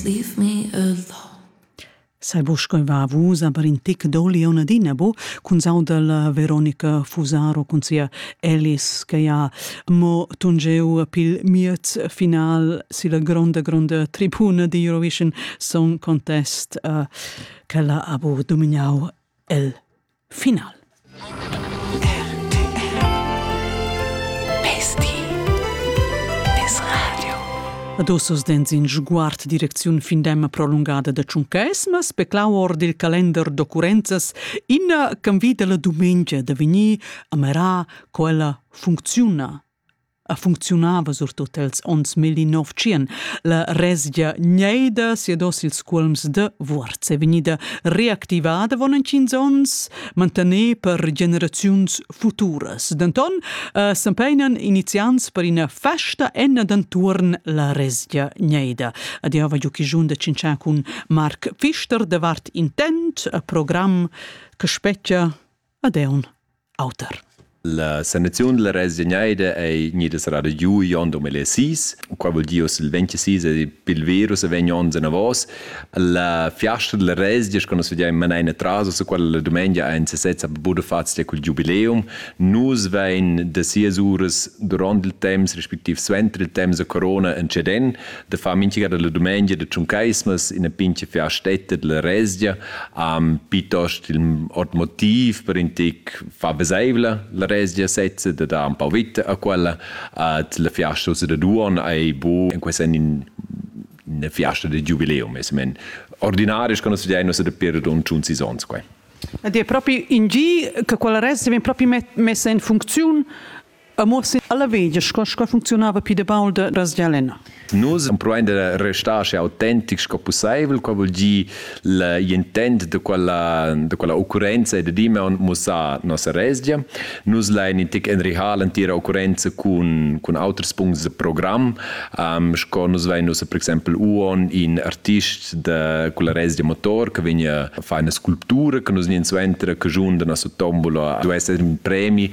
Leave me alone. Sai bo sco va vusa per in tic doli on adina bo cun saudel Veronica Fusaro cun sia Alice che ha mo tungeu pil miez final si la gronda gronda tribuna di Eurovision Song Contest uh, che ha bo dominau el final. Adosos dens in sguard direcziun findem prolungada da tschuncaisma speclau or dil calender d'occurrenzas ina can vida la dumengia da vegnir a merar quella funcziuna. a funcziunava surtut els onns 1900. La resgia gneida siedos ils cuolms de Vuorz è vegnida reactivada von en 15 onns, mantener per generaziuns futuras. Denton eh, s'empegnan iniziants per ina festa en d'enturn la resgia gneida. Adiava Giuchijun de Cincian cun Marc Pfister de Vart Intent, a programm che specchia Adeun. Auter. La sanaziun della resgegnaida ei gnida serrada giu igl onn 2006. Quei vul dir oz il 26 e pil virus vegn onns anavos. La fiasta della resgia, che nus vediam manein atras ossa quella la dumengia 21 a Budafazia cul giubileum, nus vein da sias uras duront il temps, respektiv suenter il temps da corona, in ceden, de far minchia da la dumengia de tschuncaismas ina pinche fiastetta della resgia um, piuttost il ot motiv per in tic fa veseivla la resgia sezza de dar un po vita a quella at la fiasta da duon ei bu in questa in una fiasta de giubileum es men ordinaris conosciamo se de per un tschun sisons quai Ed è proprio in gi che quella res vien proprio messa in funzione Amur sin alla veglia sco sco funcziunava pli de baul de Rasgialena. Nus empruein de restar aschi autentic sco pusseivel, qual vul dir l'intent de quella de quella occurrenza e de Dimeon mussar nossa resgia. Nus lein in tic enrihar l'entira occurrenza cun cun auters punts de program, um, sco nus vein nus per exempel uon in artist de quella resgia motor che vegn a fare una sculptura che nus nin suenter che giun de nossa tombola duesse in premi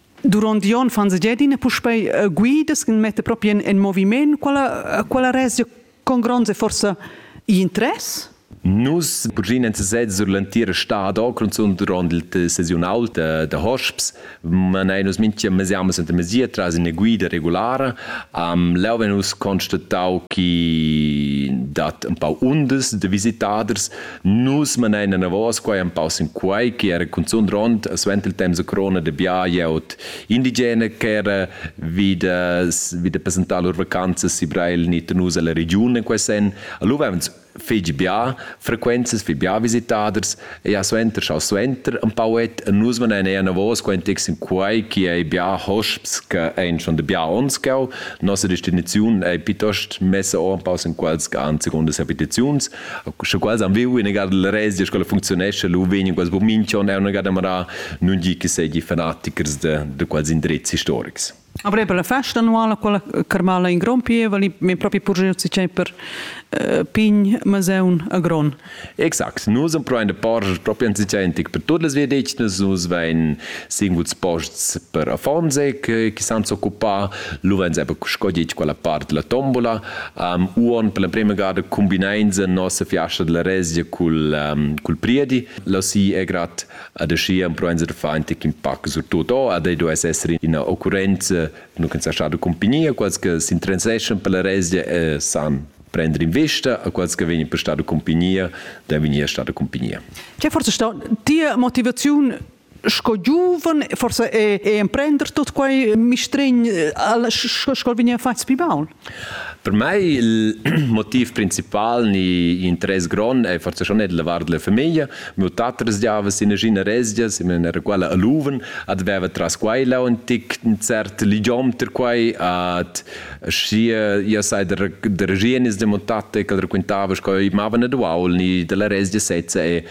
Durant Jon van Segedin puspei uh, guidas che metta proprio in, in moviment. Quella, quella resgia con gronda forza interess? Nus bugen en sesez sur l'entira stad cunzun durant il sesiunal de, de hosps manein nus minchia mesiamas enta mesia tras ina guida regulara um, leu vegn nus constatau che dat un pau undas de visitaders Nus manein enavos quai empau sin quai che era cunzun rond suenter il temps a crona de bia glieud indigena ch'era vida vida presentar lur vacanzas si Breil ni Tenus alla regiun en quei sen. Lu vevan fegi bia frequenzas fi bia visitaders e ja suenter schau suenter empau et nus manein enavos quai tic sin quai che ei bia hosps che ein schon de bia ons gau. Nossa destinaziun ei piuttost messa empau sin quels gan seconda habitaziuns sche quals han viu ina gada la rezia sco funcziunescha lu vegn quals burminchon e una gada mara nun gi che segi fanatichers de de quals indrezzi historics Après per la festa annuala quella carmala in gron pieva li min propi purgiuzi c'è per uh, pign maseun a gron Exakt nus am proin de porge propi anzicentic per todas via deci nus nus vein singuls posts per afonse che san s'occupa Luvains è scogliet quella part della tombola. Um, uon per la prima gada cumbineins en nossa fiasta della Rezia cul, um, cul priedi. Lossi è grad ad aschi empruains da far antic impact surtut o, ad ei do es esser ina occurrenza nu che sa stata compagnia, quals che s'interesseschan per la Rezia e san prender in vista a quels che vegnan per stata compagnia, da vegnir stata compagnia. C'è forse stata die Motivazione sco giuven forse e, e emprender tot quei mistregn sco vegni fatg pi baul? Per mei il motiv principal ni interess grond è forse schon el levar della famiglia. Mio tater sdiava sin nagina resgias, in era quella a Luven, adveva tras quei là un tic un cert ligiom ter quei at schi io sai der der gienis de montate che raccontava sco i mava ne duaul ni della resgia sezza e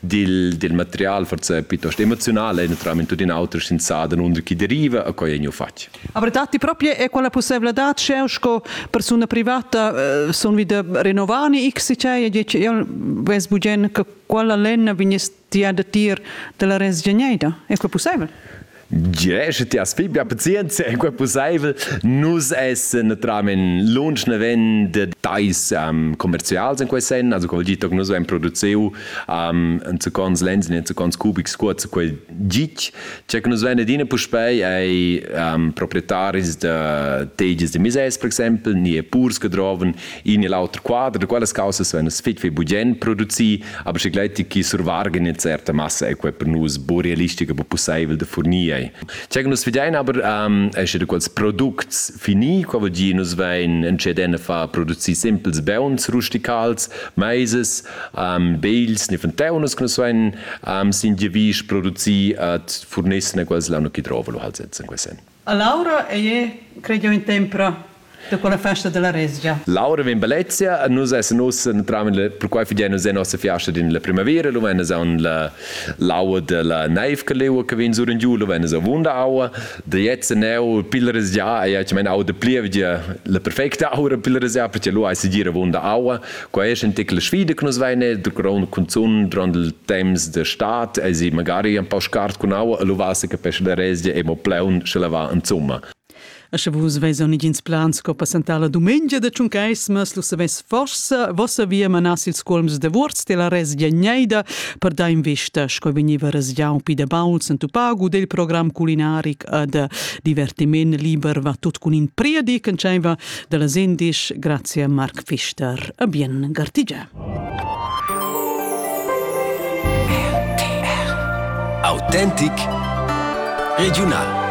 dil, dil material forse piuttosto emozionale, naturalmente tutto in auto senza da nunder chi deriva a quai gneu fatg. Aber datti proprio è quella possibilità c'è sco persona privata eh, sono wieder rinnovani x cioè io ves bugen che quella lenna vignest ti a dir della resgegneida è quel possibile? Tge sche ti has pli bia pazienza è quai pussaivel? Nus essan naturalmain lunsch naven da tais um, commerzials in quei senn, also quel gi toc nus vein produziu um, enzacons lens e enzacons cubics cuoz quei gitg. Tge che nus vein adina puspei ei um, proprietaris da tegias de mises, per exempel, ni e purs che droven in e l'auter quadr da quellas causas vegn fitg fitg bugen producì, aber sche gleiti chi survargen in certa massa e quei per nus bu realistic, bu pusseivel da furnir. Che nus vedein aber ähm, è sche quels products fini, qua vuol dire nus vein entscheden a far producir simpels beuns rusticals, maises, ähm, beils, ni fenteunas che nus vein ähm, sin die wies produzir et furnissen e quels l'hanno chi drova lo halt setzen quesen. Laura ei creiu in tempra da quella festa della resgia. Laura vegn bellezia e nus essan uss entram perquai fidein nus en nossa fiasta din la primavera lu vegn aun la l'aua della neiv che leua che vegn sur in giu lu vegn avunda aua da jetzt neu pil resgia ei ei mein aua de plievgia la perfecta aura pil resgia perché lu ei segir avunda aua Quai è in tickel sfida che nus veine da grond consum durant il temps de stat e si magari un po scart con aua e luvassa che pesce da resdia è mo pleun sche la va in zumma. E sche vus veson igins plans sco passentar la dumengia de Tschuncaismas, lu savess forsa vossa via manas ils colms de Wurz della resdia Neida per dar investa sco vegniva resgiau pi de bauls en tupagu del program culinaric e de divertiment liber va tut cun in priedi che diceva da las indisch grazia Marc Pfister. A bien gartigia. Autentic Regional